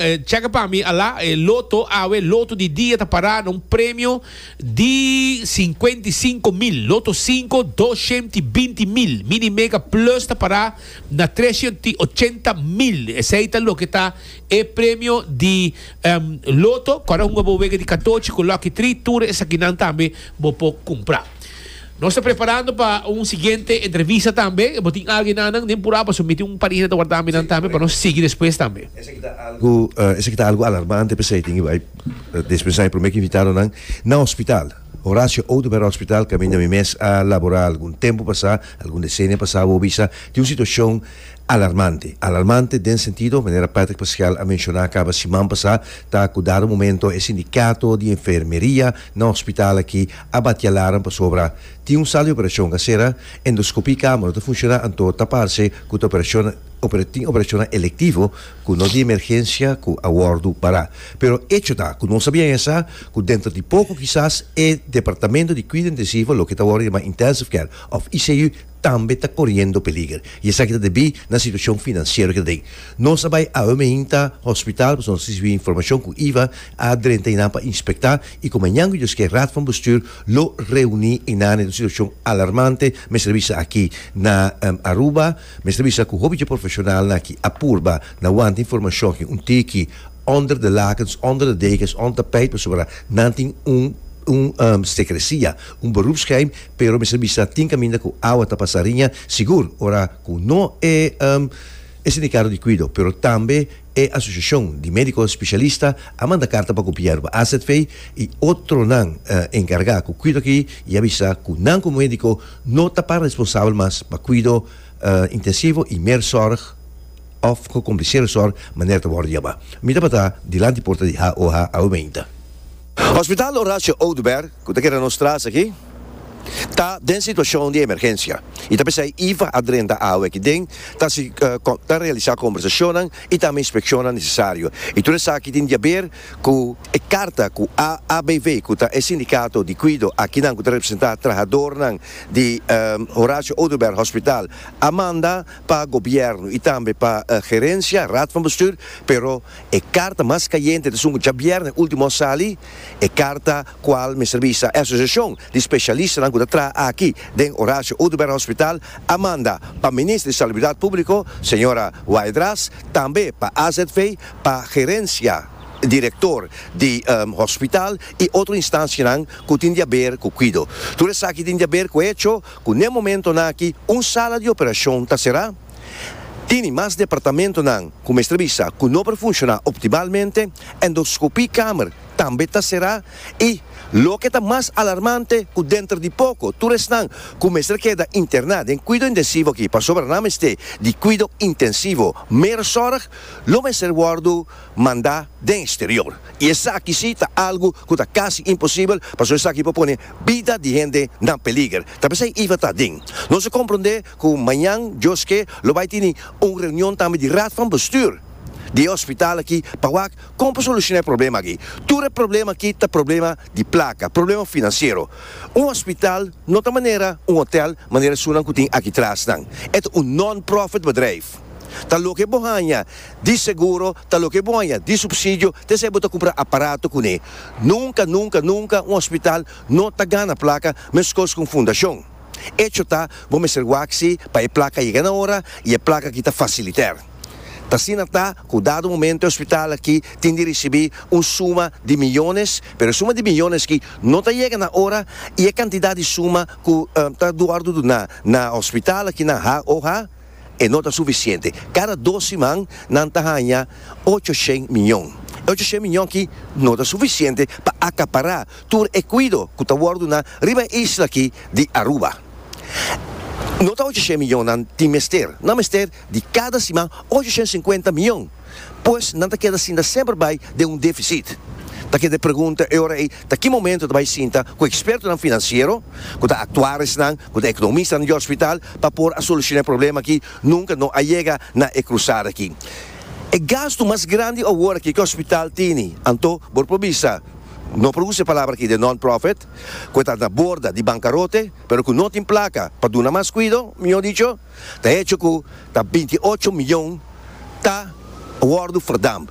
Cheka pa mi ala e loto awe loto di dia ta pará na un premio di sinkuenta i sinku mil loto sinku doshent i binti mil mini mega plus ta pará na treshent i ochenta mil esei ta loke ta e premio di loto kòrda hunga bo wega di katochi ku lòki tri tur esakinan tambe bo por kumpra. Nos ta preparando pa un siguiente entrevista tambe. Bo tin algin annan den Puraba so miti un pagina ta warda mi nan tambe pa nos sigui despues tambe. Esaki ta algu alarmante p'esei tin bai des pensá e promé ku invitadonan na hospital. Horacio Oduber Hospital kaminda mi mes a laborá algun tempu pasá, algun desenia pasá a hobi sa tin un situashon alarmante. Alarmante den sentido, manera Patrick Pascual a menshoná kaba siman pasá, ta ku dado momento e sindikato di enfermeria na hospital aki, A bat e alarm pasobra tin un sala di operashon a sera, endoskopia i kama no ta funshoná anto ta parse ku ta operashon tin operashonnan elektivo ku no di emergensia ku a wòrdu pará. Pero echo ta ku nos a biaña sa ku denter di poko kisas e departamento di kuida intensivo, loke ta wòrdu yamá intensive care òf ICU, tambe ta koriendo peliger i esaki ta debí na situashon finansiero ku ta den. Nos a bai aoemehinta hospital pasobra nos risibi informashon ku iba a drenta einan pa inspektá i ku mañan ku Dios ke Raad van Bestuur lo reuní einan den un situashon alarmante, mester a bisa aki na Aruba, mester a bisa ku hopi dje profeshonalnan ki a purba na wanta informashon aki un tiki onder de lakens, onder de dekens, onder tapijt pasobra nan tin un un sekresia. Un beroepsgeheim, pero mester bisa tin kaminda ku awa ta pasa riña sigur ora ku no e e sindikado di kuido, pero tambe e asosiashon di médiko spesialista a manda karta pa gobièrnu, AZV i otronan enkargá ku kuido aki i a bisa ku nan komo médiko no ta para responsabel mas pa kuido intensivo i mer sòrg òf gekompliseerde sòrg manera ta wòrdu yama. Mi tabata dilanti porta di HOH awe meinta. Hospital Horacio Oduber, ku ta keda nos tras aki, ta den situashon di emergensia i ta p'esei Iva a drenta awe aki den, ta realisá kombersashonnan i tambe inspekshonnan nesesario. I tur esaki tin di haber ku e karta ku AABV, ku ta e sindikato di kuido a kinan ku ta representá trahadornan di Horacio Oduber Hospital, a manda pa gobièrnu i tambe pa gerensia, raad van bestuur, pero. E karta mas kayente ta esun ku djabièrnè último a sali, e karta kual mester bisa e asosiashon di spesialistanan ku ta traha aki den Horacio Oduber Hospital a manda pa Minister di Salubridat Públiko, señora Waidras, tambe pa AZV, pa Gerensia Direktor di Hospital i otro instansianan ku tin di aber ku kuido. Tur esaki tin di aber ku hecho ku n'e momentonan aki un sala di operashon ta será. Tini mas departamentonan ku mester bisa ku no por funshoná optimalmente, endoskopí kamer tambe ta será i, loke ta mas alarmante, ku denter di poko tur esnan ku mester keda interná den kuido intensivo aki pasobra nan mester di kuido intensivo mer sòrg, lo mester wòrdu mandá den eksterior. I esaki si ta algu ku ta kasi imposibel pasobra esaki por pone bida di hende na peliger. Ta p'esei Eva ta den nos a komprondé Cu mañan, Dios ke, lo bay tini un reunion tambe di Raad van Bestuur di e hospital aki pa wak con pa soluciona e problema aki. Tur e problema aki ta problema di placa, problema financiero. Un hospital no ta manera un hotel manera esunnan cu tin aki tras nan. E ta un non-profit bedrijf. Ta loke bo haña di seguro, ta loke bo haña di subsidio, tensij bo ta cumpra aparato cune. Nunca, nunca, nunca un hospital no ta gana placa, mescos cu un fundacion. Echo ta, bo mester waksi pa e plaka yega na ora y e plaka aki ta faciliter. Ta asina ta cu dado momento e hospital aki tin di ricibi un suma di millones, pero e suma di millones aki no ta yega na ora y e cantidad di suma cu ta duordo duna na hospital aki nan ha o ha e no ta sufisiente. Cada dos siman nan ta haña ocho shen miñon. E ocho shen miñon aki no ta sufisiente pa acapara tur e cuido cu ta worde duna riba e isla aki di Aruba. No ta ocho shen miñon nan tin mester, nan mester di cada siman ocho shen sincuenta miñon. pues nan ta keda sinta semper bai den un defisit. Ta keda e pregunta e ora ei ta ki momento ta bai sinta ku ekspertonan finansiero, ku ta aktuaresnan, ku ta ekonomistanan di òspital pa por a solushona e problema aki, nunka no a yega na e krusada aki. E gastu mas grandi awor aki ku e òspital tini, anto bo por bisa, no por usa e palabra aki di non-profit, ku e ta na borda di bankarote, pero ku no tin plaka pa duna mas kuido, mihó dicho, ta hecho cu ta binti ocho miyon ta wordo verdamp.